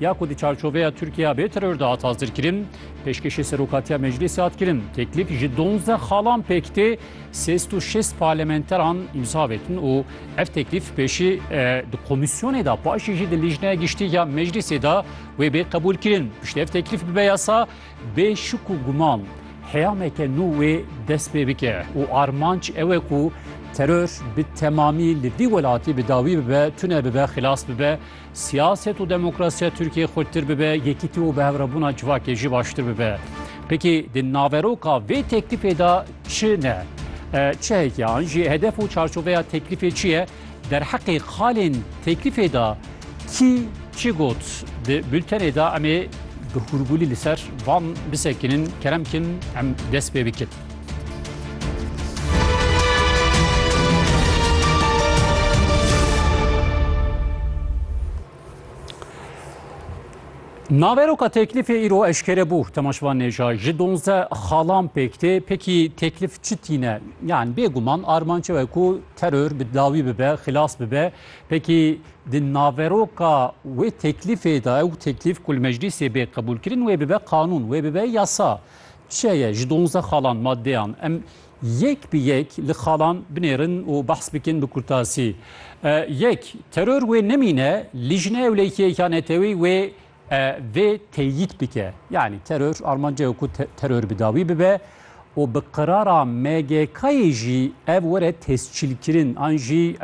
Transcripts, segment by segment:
ya ku di çarçoveya Tirkiye bê teror de hat hazirkirin, pêşkêşê Serokatiya Meclîsê hat kirin. Teklîf ji donzdeh xalan pêk tê, sêst û şêst parlamenteran îmza vetin û ev teklîf pêşî di komîsyonê de paşî jî di Lîjneya Giştî ya Meclîsê de wê bê qebûlkirin. Piştî ev teklîf bibe yasa bê şik û guman heyameke nû wê dest pê bike û armanc ew e ku teror bi temamî li vî welatî bi dawî bibe, tune bibe, xilas bibe. Siyaset û demokrasiya Tirkiyeyê xurttir bibe, yekîtî û bihevrebûna civakê jî baştir bibe. Pekî di naveroka vê teklîfê de çi ne? Çi heye ki an jî hedef û çarçoveya teklîfê çi ye? Derheqê xalên teklîfê de kî çi got? Di bultenê de em ê bi hûrgûlî li ser van bisekinin. Kerem kin em dest pê bikin. Naveroka teklifê îro eşkere bû Temaşvan Nêja ji donze xalan pêk tê pekî teklif çi tîne yan bêguman armançe we ku teror bi dawî bibe xilas bibe pekî di naveroka wê teklifê de ew teklif ku li meclîsê bê qebûlkirin wê bibe qanûn wê bibe yasa Çiya ye ji donzdeh xalan maddeyan em yek bi yek li xalan binêrin û behs bikin bi kurtasî. Yek, teror wê nemîne lijne ewlehiyek ya netewî wê vê teyîd bike. Yanî teror armanca ye ku teror bi dawî bibe û bi qirara MGK'yê jî ev were tescîlkirin an jî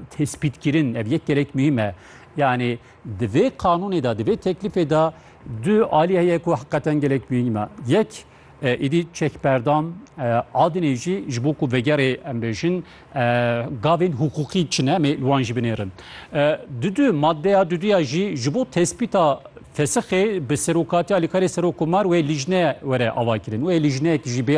tespîtkirin. Ev yek gelek muhîm e. Yanî Di vê qanûnê de, di vê teklîfê de du alî heye ku heqeten gelek mîhîn me. Yek, êdî çekberdan adinê jî ji bo ku vegerê em bêjin gavên hiqûqî çi ne em ê li wan jî binêrin. Dudu maddeya duduya jî ji bo tespîta fesixê bi serokatiya alîkarê serokomar wê lîjne were avakirin. Wê lîjneyek jî bê